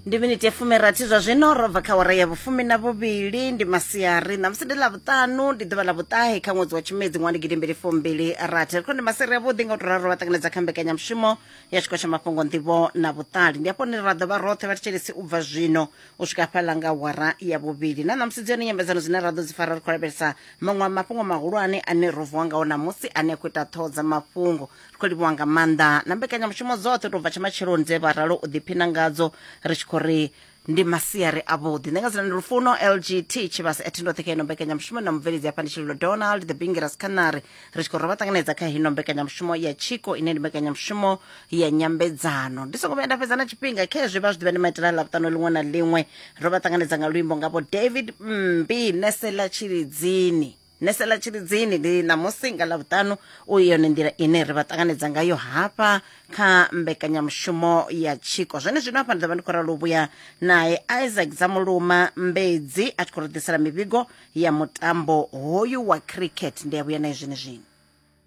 ndi miniti ya fumirathi zwa zwino ro bva kha wara ya vhufumi na vhuvhili ndi masiari ṋamusi ndi ḽa vhuṱanu ndi ḓuvha ḽa vhuṱahe kha ṅwedzi wa tshimedzi ṅwana gidi mbili fumbili rathi ri khou ndi masiri avhuḓi nga u to ralo vha ṱanganedza kha mbekanyamushumo ya tshiko tsha mafhungo nḓivho na vhuṱali ndi afho ni ra ḓo vha roṱhe vha thetshelesi u bva zwino u swika fhaḽa nga wara ya vhuvhili na ṋamusi dzi hone nyambedzano dzine ra ḓo dzi fara ri khou lavhelesa maṅwe a mafhungo mahulwane ane ro vuwa ngao ṋamusi ane a khou ita ṱhoho dza mafhungo ri khou livhuwa nga maanḓa na mbekanyamushumo dzoṱhe tou bva tsha matsheloni dze vha ralo u ḓiphina ngadzo ri tshi khou ri ndi masiari avhuḓi ndi nga dzina ndi lufuno lgt tshivhasa ethi ndoṱhe kha ino mbekanyamushumo na mubveledzi hafha ndi tshililo donald the bingeras canary ri tshi khou ri vha ṱanganedza kha ino mbekanyamushumo ya chiko ine ndi mbekanyamushumo ya nyambedzano ndi songo vhuya nda fhedza na tshifhinga khe zwi vha zwi ḓivha ndi maitela ḽa vhuṱano ḽiṅwe na ḽiṅwe ro vha ṱanganedza nga luimbo ngavho david mmbi nese ḽa tshilidzini nese ḽa tshilidzini ndi ṋamusi nga ḽavhuṱanu u yone nḓila ine ri vha ṱanganedza ngayo hafha kha mbekanyamushumo ya tshiko zwone zwino hafha ndi ḓo vha ndi khou ralo vhuya nae isaac dzamuluma mbedzi a tshi khou ri ḓisela mivhigo ya mutambo hoyu wa cricket ndi a vhuya naye zwene zwino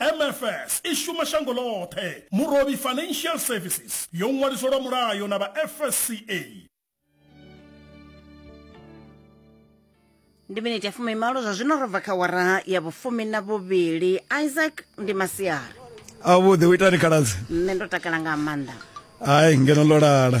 MFS i shuma shango ḽoṱhe. Murovhi Financial Services yo ṅwaliswa lwa mulayo na vha FSCA. ndi miniti ya fumi malo zwa zwino ro bva kha wara ya vhufumi na vhuvhili isaac ndi masiari avhuḓi u itani khaladzi nṋe ndo takala nga maanḓa hai ngeno ḽo lala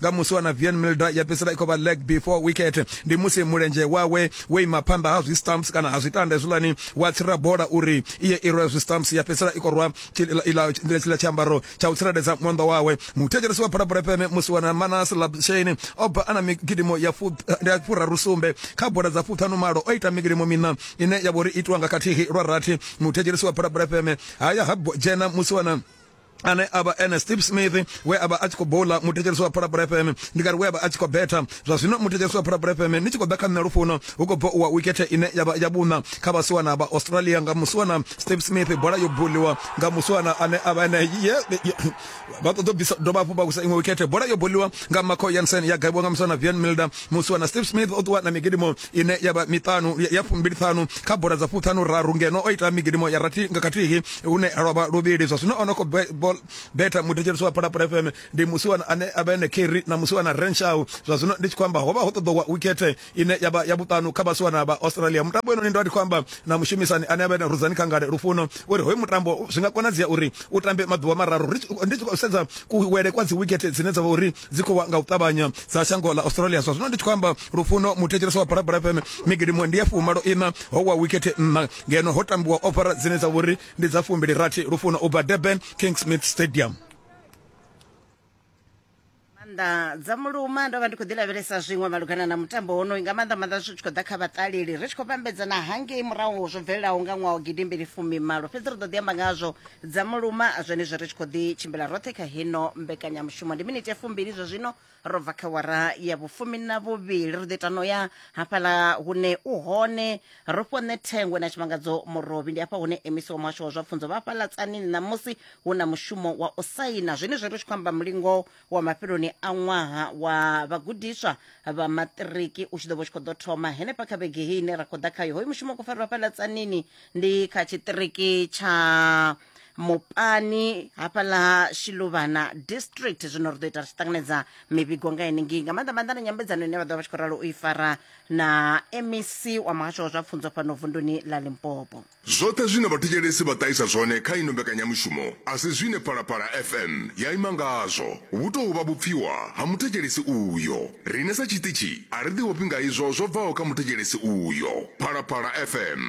nga musi wa na Vian Milda ya fhedzisela i khou vha leg before wicket ndi musi mulenzhe wawe wo ima phanḓa ha zwi stumps kana ha zwitanda hezwiḽani wa tsira bola uri iye i rwe zwi stumps ya fhedzisela i khou rwa tshiḽa tshiambaro tsha u tsireledza mwanḓa wawe muthetshelesi wa phalaphala fm musi wana manas labshane o bva a na migidimo ya furaru sumbe kha bola dza fuṱhanu malo o ita migidimo miṋa ine ya vho ri itiwa nga khathihi lwa rathi muthetshelesi wa phalaphala fm haya ha dzhena musi wana ane avha ene steve smith we avha a tshi khou bola muthetshelesi wa phalaphala fm ndi kari we avha a tshi khou betha zwa zwino muthetshelesi wa phalaphala fm ni tshi khou ḓa kha nṋe lufuno hu khou bva uwa wikethe ine yavha ya vhuṋa kha vhasiwana vha australia nga musiwana steve smith bola yo boliwa nga musiwana ane avha ene vha ṱoḓo bvisa dovha hafhu vha kusa iṅwe wikethe bola yo boliwa nga marco yansen ya gaiwa nga musiwana vian milder musiwana steve smith o ṱuwa na migidimo ine ya vha miṱanu ya fumbiliṱhanu kha bola dza fuṱhanu raru ngeno o ita migidimo ya rathi nga khathihi hune lwa vha luvhili zwa zwino o no khou betha muthetshelisi wa phalaphala fm ndi musiwana ane a vha ene keri na musiwana renshaw zwa zwino ndi tshi khou amba ho vha ho ṱoḓowa wikethe ine ya vha ya vhuṱanu kha vhasiwana vha australia mutambo enoni ndo ndi khou amba na mushumisani ane a vha ene ruzani khangale lufuno uri hoyu mutambo zwi nga konadzea uri u tambe maḓuvha mararu ndi tshi khou sedza kuwele kwa dzi wikethe dzine dza vha uri dzi khou wa nga u ṱavhanya dza shango ḽa australia zwa zwino ndi tshi khou amba lufuno muthetshelesi wa barabara fm migidimo ndi ya fumalo ina ho wa wikete nna ngeno ho tambiwa ofara dzine dza vhori ndi dza fumbili rathi lufuno u bva durban king smith stadium maanḓa dza muluma ndo vha ndi khou ḓi lavhelesa zwiṅwe malugana na mutambo wonoyu nga maanḓa maanḓa zwi tshi khou ḓa kha vhaṱaleli ri tshi khou vhambedzana hangei murahu zwo bvelelaho nga ṅwaha wa gidimbili fumimalo fhedzi ri ḓo ḓi amba ngazwo dza muluma zwenezwo ri tshi khou ḓi tshimbila roṱhe kha hino mbekanyamushumo ndi miniti ya fumbili zwa zwino ro bva kha wara ya vhufumi na vhuvhili ri ḓo ita no ya hafhaḽa hune u hone ro fhiwa nṋe thengwe na tshimangadzo murovhi ndi hafha hune emisi wa muhasho wa zwa pfunzo vha hafhaḽa tsanini ṋamusi hu na mushumo wa u saina zwenezwo ri tshi khou amba mulingo wa mafheloni a ṅwaha wa vhagudiswa vha maṱiriki u tshi ḓo vha u tshi khou ḓo thoma henefha kha vhege hei ine ra khou ḓa khayo hoyu mushumo u khou farelwa fhaḽa tsanini ndi kha tshiṱiriki tsha mupani hafhaḽa shiluvhana district zwino ri ḓo ita ri tshi ṱanganedza mivhigo nga henengei nga maanḓa maanḓa na nyambedzano ine vha ḓo vha tshi khou ralo u i fara na mec wa muhasho wa zwa pfunzo fhano vunduni ḽa limpopo Zwoṱhe zwine vhathetshelesi vha ṱahisa zwone kha ino mbekanyamushumo a si zwine Phalaphala FM ya ima ngazwo. Vhu tou vha vhupfiwa ha muthetshelesi uyo. Riṋe sa tshiṱitshi a ri ḓihofhi nga izwo zwo bvaho kha muthetshelesi uyo. Phalaphala FM.